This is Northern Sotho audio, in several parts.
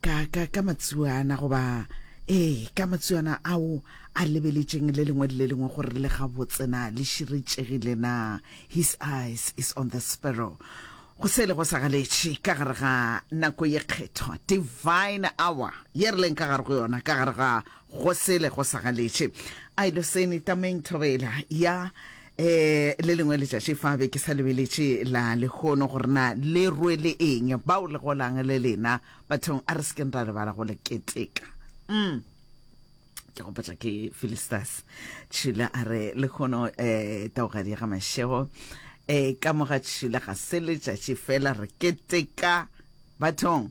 ka ka ka matsuana goba ee ka matsuana ao a lebeletšeng le lengwe le le lengwe gore le ga botsena le širetšegile na his eyes is on the sparrow go se le go sa galetše ka gare ga nako ye kgethwa divine hour ye re leng ka gare go yona ka gare ga Go sele go sa galetše. Ailoseni, tameng thobela ya um le lengwe letšatši fa be ke sa lebeletše la lehono gore na le rwele eng, bao le golang le lena bathong a re se keng ra lebala go le keteka. Mm. ke gopotša ke Philisters tšhila a re lehono um eh, taogadi ya ga mašego um eh, ka mo ga tšhila ga se letšatši fela re keteka bathong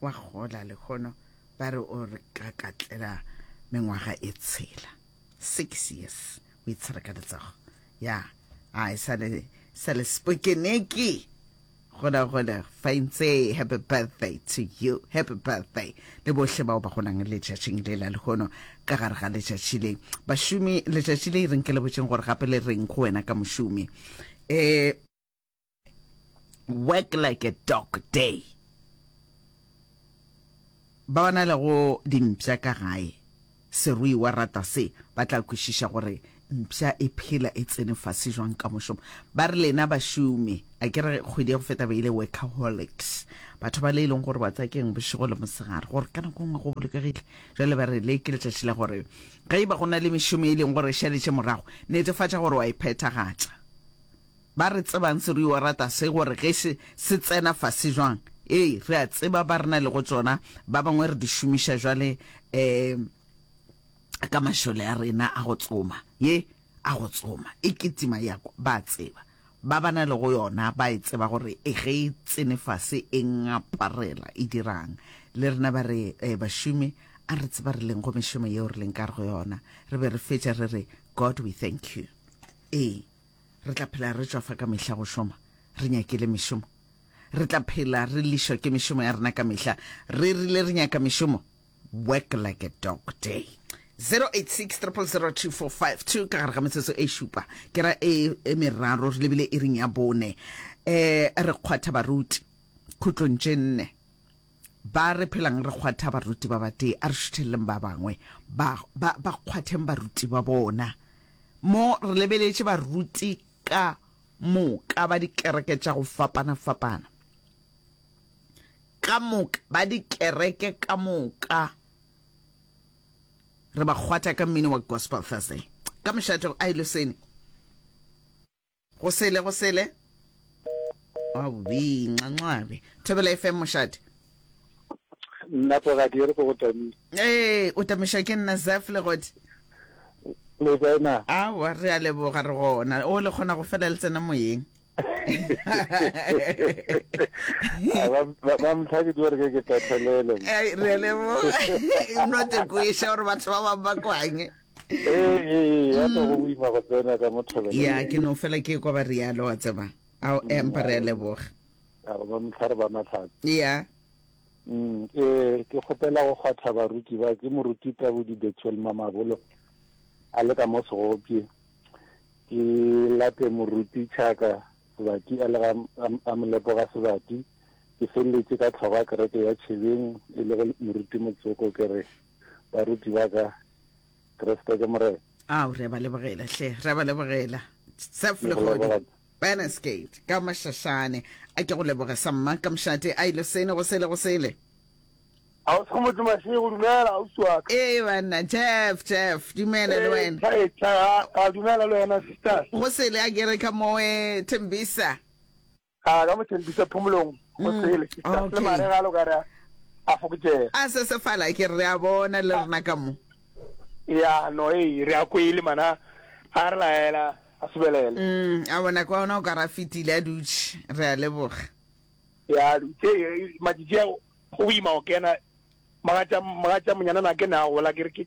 wa gola lehono ba re o re ka katlela mengwaga e tshela six years o itshwara ka letsogo ya a e sa le sa le spokeneki gola gola faintse happy birthday to you happy birthday le bohle bao ba gonang letšatšing le la lehono ka gare ga letšatši le bašomi letšatši le e reng ke le botšeng gore gape le reng go wena ka mošomi um work like a dog day ba ba na le go dimpša ka gae serui wa rata se ba tla kwešiša gore mpša e phela e tsene fase jwang ka mošomo ba re lena bašomi a ke re kgwedi ya go feta ba ile workaholics batho ba le e leng gore ba tsakeng bošego le mosegare gore ka nako nngwe go bolokegile jale ba re le ke letšatši la gore ge e ba go na le mešomo e leng gore e šaletše morago netefatša gore wa e phethagatša Ba re tsebang se re yo rata se gore ge se se tsena fase jwang ee re a tseba ba rena le go tsona ba bangwe re di šomiša jwale um ka mašole a rena a go tsoma ye a go tsoma e ketima ya ba tseba ba bana le go yona ba e tseba gore e ge e tsene fase e ngaparela e dirang le rena ba re eh, bašomi a re tseba re leng go mešomo yeo re leng ka re go yona re be re fetša re re god we thank you ee Re tla phela re tšwa fa ka mehla go šoma, re nyakile mešomo. Re tla phela re lišwa ke mešomo ya rena ka mehla, re rile re nyaka mešomo. Work like a dog day. 086 000 2452 ka gare ga metsotso e šupa ke ra e, e meraro re lebile iring ya bone um re kgwatha baruti khutlong tše nne Ba re phelang re kgwatha baruti ba batee, a re šutheleleng ba bangwe ba, ba, ba kgwatheng baruti ba bona. Mo re lebeletše baruti ka moka ba dikereke tša go fapana-fapana, ka moka ba dikereke ka moka, re ba kgwatha ka mmino wa Gospel Thursday, ka mošate, a e le sene. Go sele, go sele. Awii, nxanxabe. Thobela FM mošate. Nna pogadi e re ko go tamile. Ee, o tamiša ke nna Zaf le godi. Le kae na? Awa, re a leboga re gona. O le kgona go fela le tsena moyeng. ba mtlhake di gore ke ke tathelele. Ai, re a leboga. Not kweša gore batho ba bang ba kwanye. Ee, ee, ya ka go boima go tsena ka mo thobelelong. Ya, ke no fela ke kwa ba rialo, wa tseba. Ao, empa re a leboga. A re ba mohlare ba matlhatse. Ya. Mm, ee, ke kgopela go kgwatha baruti ba ke moruti Tabudi Bethuel Mamabolo a le ka mo Segopje. Ke late moruti Tšhaka Sebati a le ga a molepo ga Sebati. Ke feleletše ka tlhogo ya kereke ya Tšhebeng e le go moruti Motsoko ke re. baruti ba ka kreste ke morena ao re a ba lebogela hle re a ba lebogela sef legodi banasgate ka mašašane a ke go leboge sa mma ka mošate a ile sene go sele go sele a o sego motho masego dumela o swa ee banna jeff jeff dumela le wena a dumela le wena sisters go sele a kere ka moe thembisa a ka mothempisa phomolong go mm, sele le mare ga lo ka re a fokotšega a se se fala ke re a bona le rena ka mo ya no e re a kwele mana a re laela a sebelele mm a bona kwa ona o ka ra fitile a dutše re a leboga ya dutše majiji go boima go kena magatša magatša monyana na ke ne a gola ke re ke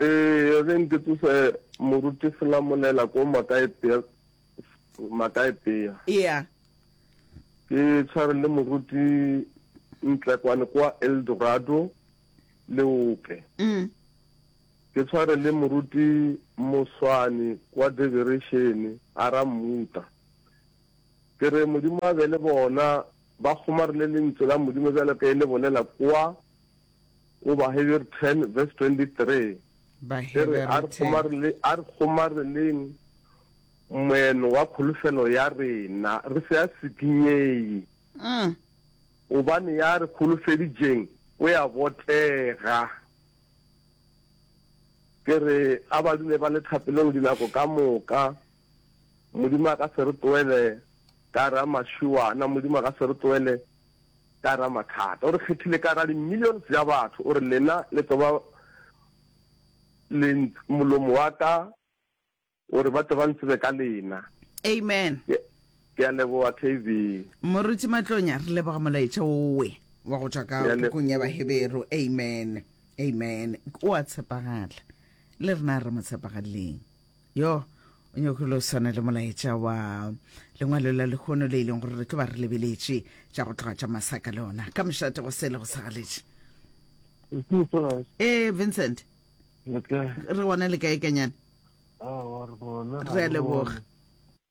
Ee, ge nke tsose moruti selamolela ko makaepea makaepea ea ke tshware le moruti ntlekwane kwa eldorado le ope mm. ke tshware le moruti moswane kwa deverešene a ra mmuta ke re modimo a be le bona ba kgomarile lentswe la modimo bjalo ka e le bolela kwa Goba Hebere 10 verse 23 e re, A re kgomareleng Moeno wa kholofelo ya rena, re se a sikinyei, mm. gobane ya re kholofeditšeng o ya botega. Ke re a ba dule ba le thapelong dinako ka moka, Modimo a ka se re tloele ka ra mašuana, Modimo a ka se re tloele ka ra mathata. O re kgethile ka ra di millions ya batho, o re lena le tlo ba lent molomo wa ka, o re ba tle ba ntsebe ka lena. Amen. Ke, ke a leboga KB. Moruti Matlonya, re leboga molaetša owe wa go tšwa ka pukung ya Baheberu. Amen. Amen. O a tshepagala. Le rena re mo tshepagaleleng. yo o nyoko le o swana le molaetša wa lengwalo la lekgono le e leng gore re tlo ba re lebeletše tša go tloga tša masaka le ona ka mošate go sele go sagaletše ee vincent re gona le kae kanyane re a leboga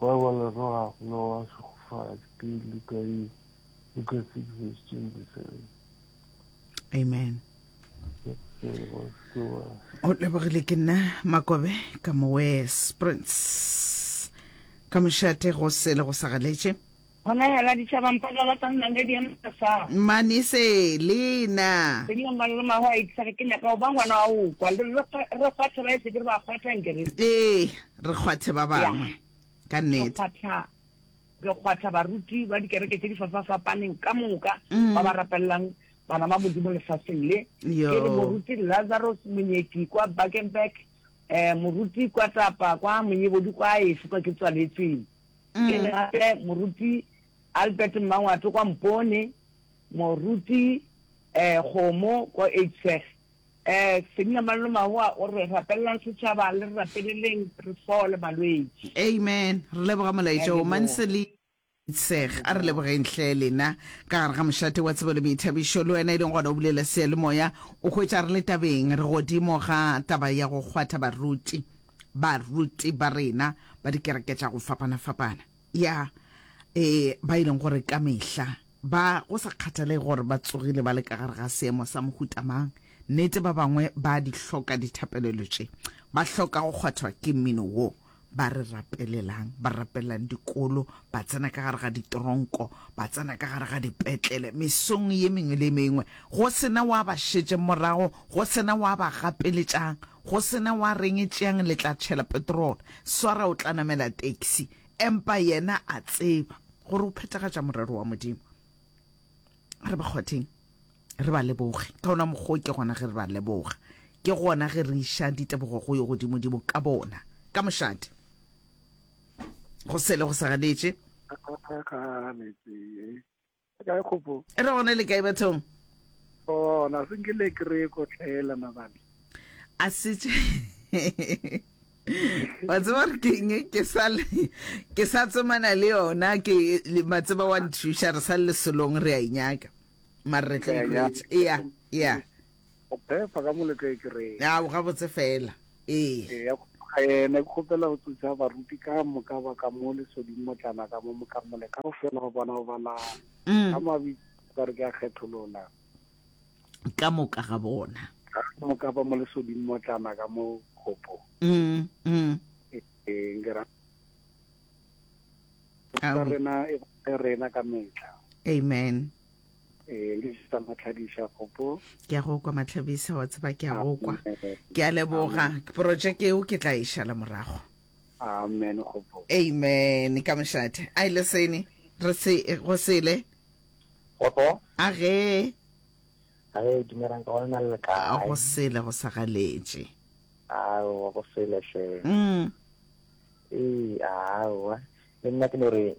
Ba ba lebogago le go ba šegofadi ke Luka ye, Luka 6 verse 27. Amen. O lebogile ke nna Makobe ka Mowes Prince ka mošate go sele go sa galetše. Gona yala ditšhaba mpa ga ba sa nna le di emela sa. Mane se le na. Ke dilo mang le mang a itisa ge ke nyaka go ba ngwana wa go kwa. Re re kgwathe ba e se ke re ba kgwatha nke re. Ee, re kgwathe ba bangwe. Ka nnete. Re kgwatha, re kgwatha baruti ba dikereke tše di fafafapaneng ka moka ba ba rapelelang bana ba Modimo lefaseng le. Ke re moruti Lazarus Monyeki kwa Bakenberg, um moruti kwa Tapa, kwa Monyebodi kwa a efe kwa ke tswaletsweng. Ke le gape Moruti Albert Mmangwatu kwa Mpone, Moruti eh, Kgomo ko Eidseg. Eh, Senina Mallomahoa o re rapelelang setšhaba le re rapeleleng re fole malwetši. Amen. Re leboga molaetša o Amen. Manseli Eidseg. A re lebogeng hle lena ka gare ga mošate wa tsebo le boithabišo. Le wena e leng gona o bulela seyalemoya, o hwetša re le tabeng, re godimo ga taba ya go kgwatha baruti. baruti ba rena ba dikereke tša go fapana-fapana, ya, e, ba e leng gore ka mehla ba, go sa kgathalege gore ba tsogile ba le ka gare ga seemo sa mohuta mang, nnete, ba bangwe ba a di hloka dithapelelo tše. Ba hloka go kgwathwa ke mmino wo ba re rapelelang, ba rapelelang dikolo, ba tsena ka gare ga ditronko, ba tsena ka gare ga dipetlele, mesong ye mengwe le ye mengwe, go se na wa ba šetšeng morago, go se na wa ba gapeletšang. Go se na wa reng, Tšeang le tla tšhela petrolo, swara o tla namela taxi. Empa yena a tseba gore o phethagatša morero wa Modimo. A re ba kgwatheng, re ba leboge. Ka wona mokgwa wo ke gona ge re ba leboga, ke gona ge re iša ditebogo go Yo Godimodimo ka bona, ka mošate. Go sele go sa ganetše. A a ganetše. Kae kgopo? E re gone le kae bathong? Gona, se nke le kry-e ko tlhela mabane. A setse. wa tseba re keng ke sa ke sa tsomana le yona ke matseba wa nthuša re sa le selong re a inyaka mare re tla ikwetsa ea ea Go phefa ka moletlo e ke reng? Ya, gabotse fela. Ee. Ee, ya kgoga yena. Ke kgopela go tsosa baruti ka moka ba ka mo lesoding motlana ka mo mokamole ka go fela go bona go bala ka mabitso ka re ke a kgetholola. Ka moka ga bona. Ka moka ba mo lesoding motlana ka mo kgopo. Ee, nke ra rena e rena ka metlha. Amen. Ee, le sa matlhabisa gopo. Ke a go kwa matlhabisa wa tseba ke a go kwa. Ke a leboga projeke eo ke tla e šala morago. Amen gopo. Amen ka mošate. A ile sene re se go sele. Gopo. A ge. A ge dumerang ka ona le ka. A go sele go sa galetše. A o go sele hle. Mm. Ee, a wa. Le nna ke no re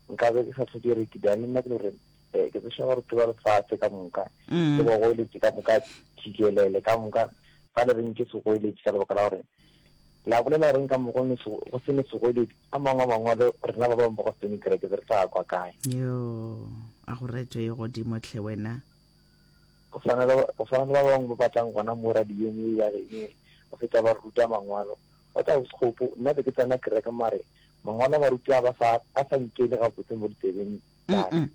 nkabe ke sa tlhoke gore ke bjane nna ke le gore um ke tsešwa gore ke ba lefatshe ka moka mm. ke ba goeletše ka moka thikelele ka moka fa le reng ke segoeletše ka lebaka la gore la bolela goreng ka mogo go se ne segoeletše a mangwe a mangwalo rena ba bangwe ba go sene kereke tse re tla kwa kae yo a go retwe ye godimo tlhe wena go tshwana le ba bangwe ba batlang gona mo radiong e ya rene go feta ba ruta mangwalo Wa tseba Sekgopo, nna be ke tsena kereke mare mangwalo a baruti a ba sa a sa nkene gabotse mo ditsebeng tsa ka.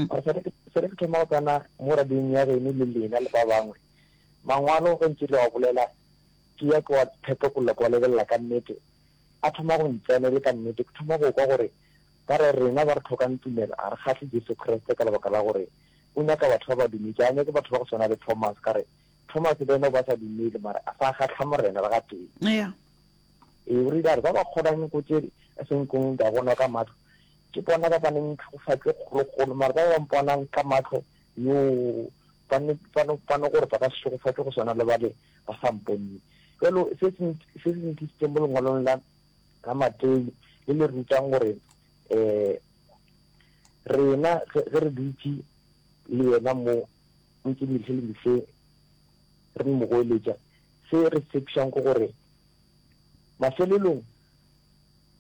Mara sa le sa le ke thoma go tsena mo radiong ya geno le lena le ba bangwe, mangwalo ge ntše le wa bolela ke ya ke wa phetogolla ke wa lebelela ka nnete, a thoma go ntsena e le ka nnete. Ke thoma go kwa gore ba re rena ba re tlhokang tumelo ga re kgahle Jesu Kriste ka lebaka la gore o nyaka batho ba ba dumetše, ga nyake batho ba go swana le Thomas ka re Thomas le yena o ba sa dumele mara a sa kgatlha morena le ga tee ya ee o rile a re ba ba kgonang ko tse a seng kong ka bona ka matlho ke bona ba ba neng tlhogofatse kgologolo mara ba ba mponang ka matlho yo ba ne ba no ba no gore ba ka se tlhogofatse go swana le ba le ba sa mponne jalo se se se se ntlisitseng mo lengwalong la la matei le le rutang gore um rena ge re dutse le yena mo ntse le se le ntse re mo goeletša, se re tshepišang ke gore mafelelong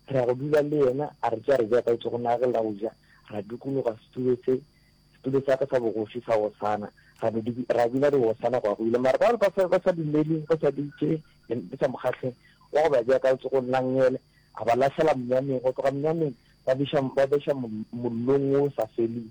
re ya go dula le yena, a re tšea re ja ka etso go nage la go ja, ra dukologa setulo se setulo sa ka sa bogoši sa Hosana, ra be ra bina re Hosana go ya go ile. Mara ba ba sa ba sa dumele, ba sa dutše, di sa mo kgahle, wa go ba ja ka etso go nna ngele, a ba lahlela monyameng, go tloga monyameng ba beša ba beša mollong o sa feleng.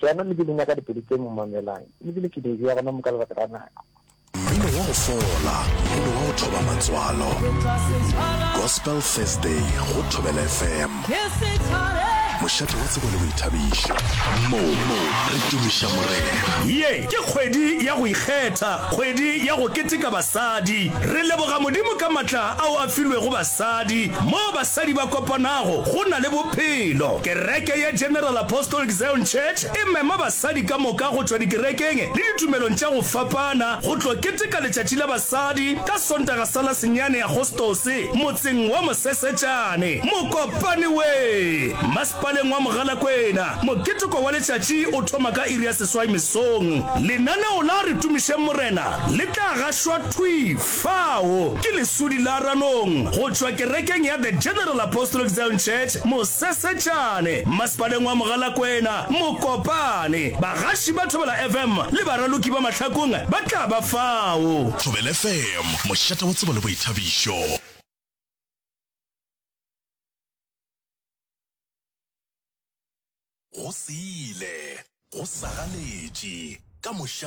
Jaanong le be le nyaka dipelo tše mmamelang, le bile ke di e-bea gona mo ka lebaka la nako. Mmino wa go fola go be wa go thoba matswalo. Gospel Thursday go Thobela FM. Mošate wa tsebo le boithabišo. Mo re tumiša Morena. Ye ke kgwedi ya go ikgetha, kgwedi ya go keteka basadi. Re leboga Modimo ka matla ao a filwego basadi. Sadi, moo basadi ba kopanago go na le bophelo. Kereke ya General Apostolic Zion Church e mema basadi ka moka go tšwa dikerekeng le ditumelong tša go fapana go tlo keteka letšatši la basadi ka Sontaga sa la senyane Agostose motseng wa Mosesetšane. Mokopane we! Masepaleng wa Mogalakwena. Moketeko wa letšatši o thoma ka iri ya seswai mesong. Lenaneo la Re Tumišeng Morena le tla gašwa thwi! Fao ke leswudi la ranong go tšwa kerekeng ya The General Apostolic Zion Church Mosesetšane, Mmasepaleng wa Mogalakwena, Mokopane. Bagaši ba Thobela FM le baraloki ba mahlakong ba tla ba fao. Thobela FM, mošate wa tsebo le boithabišo. Go se ile, go sa galetše, ka mošate.